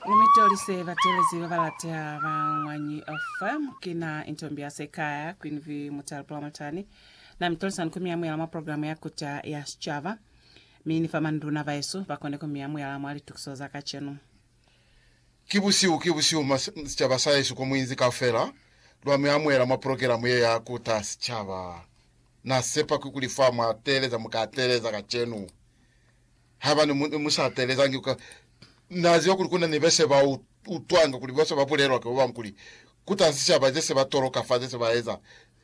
Ni mi tolise batelezi ba ba lateha ba Ñwanyi FM. Ki na Intombi ya Sekaya, Queen V Mutale Pulamatani. Na mi tolisa ni ku mi amuhela mwa programu ya Kuta ya Sicaba. Mi ni fa manduna baesu ba kone ku mi amuhela mwa litukiso za kacenu. Ki busihu, ki busihu mwa sicaba sahesu ko muinzi kaufela. Lwa mi amuhela mwa pulogelamu ye ya Kuta ya Sicaba. Na sepa kikuli fa mwa teeleza mu ka teeleza kacenu. Haiba ne mu, mu sa teelezangi ka. Na ziba kuli kuna ni bese ba u, utwanga kuli bose ba bulelwa ki babañwi kuli, Kuta sicaba zese ba toloka fa zese ba eza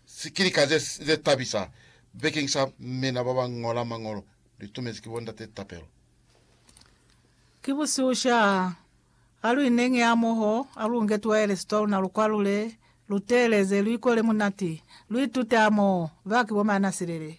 sikilika ze, ze tabisa bekeng sa mina ba ba ñola Mañolo, lu itumezi ki bo Ndate tapelo. Ki busihu sha. Ha lu ineñi hamoho, ha lu nge tuwayelesi twa luna lu kwalule, lu teeleze, lu ikole munati, lu itute hamoho, ba ki bo Maanasilele.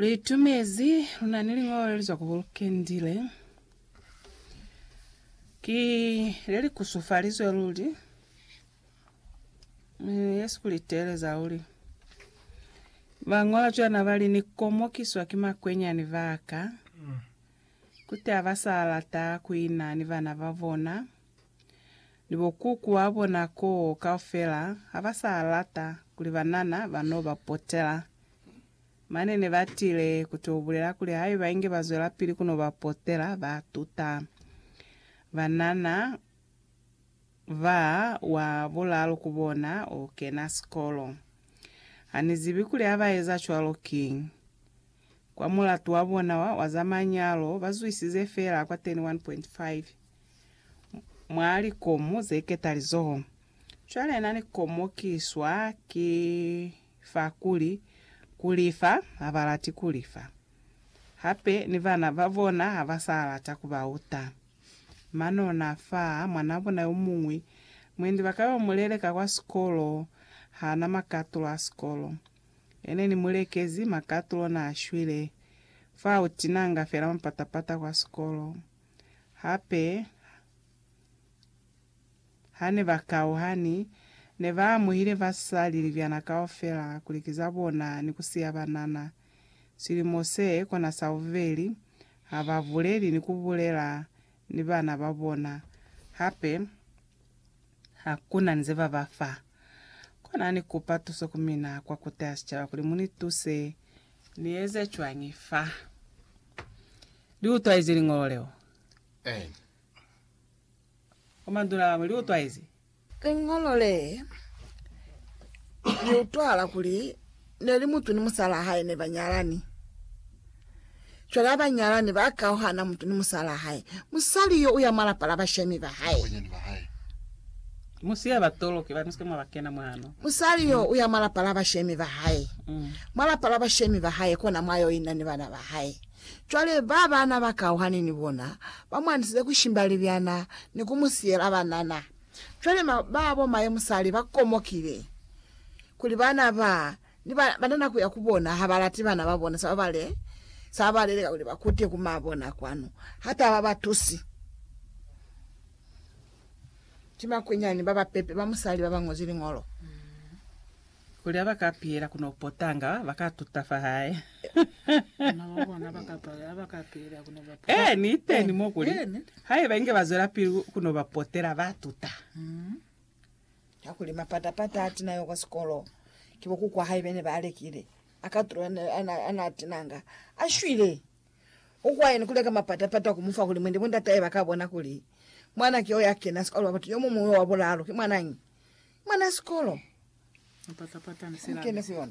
Liitumezi, Lu na ni liñolo le li zwa ku Burkendi le ki le li kusufalizwe luli, mi ye si ku li teeleza luli. Ba ñola cwana ba li, Ni komokiswa ki makwenyani ba ka, koti ha ba sa lata ku ina ni bana ba bona, ni bo kuku ba bona koo kaufela ha ba sa lata kuli banana ba n'o ba potela Mane ne ba tile ku t'o bulela kuli haiba inge ba zwelapili ku n'o ba potela, ba tuta banana ba wa bulaalu ku bona o kena sikolo. Ha ni zibi kuli ha ba eza cwalo kiñi. Kwa mulatu wa bona wa, wa za manyalo, ba zwisize feela kwa 31.5 mwa likomu ze ketalizoho. Cwale na ni komokiswa ki. fa kuli, Ku lifa ha ba lati ku lifa. Hape ni bana ba bona ha ba sa lata ku ba uta. Mano na fa mwanaa bona yo muñwi mwendi ba ka yo mu leleka kwa sikolo. Ha na makatulo a sikolo. Ene ni mu lekezi makatulo na shwile. Fa u tinanga fela mapatapata kwa sikolo. Hape, Hane ba kauhani, ne ba amuhile basali libyana kaufela kuli ki za bona ni ku siya banana. Silimo se kona sa bubeli, ha ba buleli ni ku bulela ni bana ba bona. Hape, ha ku na ni ze ba ba fa. Kona ni kupa tuso ku mina kwa Kota ya Sicaba kuli mu ni tuse. Ni eze cwañi fa? Li utwaize liñolo leo? Ee. Komandu la gabo li utwaezi. Liñolo le, li utwala kuli ne li mutu ni musalaa hae ne ba nyalani. Cwale ha ba nyalani, ba kauhana mutu ni musalaa hae. Musali yo u ya mwa lapa la bashemi ba hae. Mu siya ba toloki ba nuske mwa ba kena mwano. Musali yo u ya mwa lapa la bashemi ba hae. Mwa lapa la bashemi ba hae kona mwa yo ina ni bana ba hae. Cwale ba ba na ba kauhani ni bona ba mu andisize ku shimba libyana ni ku mu siyela banana. Cwale ma, ba bo maye musali ba komokile, kuli bana ba, ni ba, banana kuya ku bona ha ba lati bana ba bona sa ba bale, sa ba baleleka kuli ba kute ku ma bona kwanu, ha ta ba ba tusi. Ki makwinyani ba ba pepe ba musali ba ba ñozwi Liñolo. Kuli haba ka piyela ku no potanga, ba ka tuta fa hae. Bana ba bona ba ka pala haba ka piyela ku no ba potanga. Ee, ni teñi mo kuli, haiba inge ba zwelapili ku no ba potela, ba tuta. Kakuli mapata-pata a tina yo kwa sikolo, ki bo kuku wa hae bene ba lekile, a ka tula a na tinanga, a shwile. Ukwayeni kuli ka mapata-pata ku mu fa kuli mwende bo ndatahe ba ka bona kuli mwana ki yo ya kena sikolo wa batu yo mu muñwi wa bulaalu ki mwanañi? Mwana sikolo! Mapata-pata ni se la. Kene ku yona.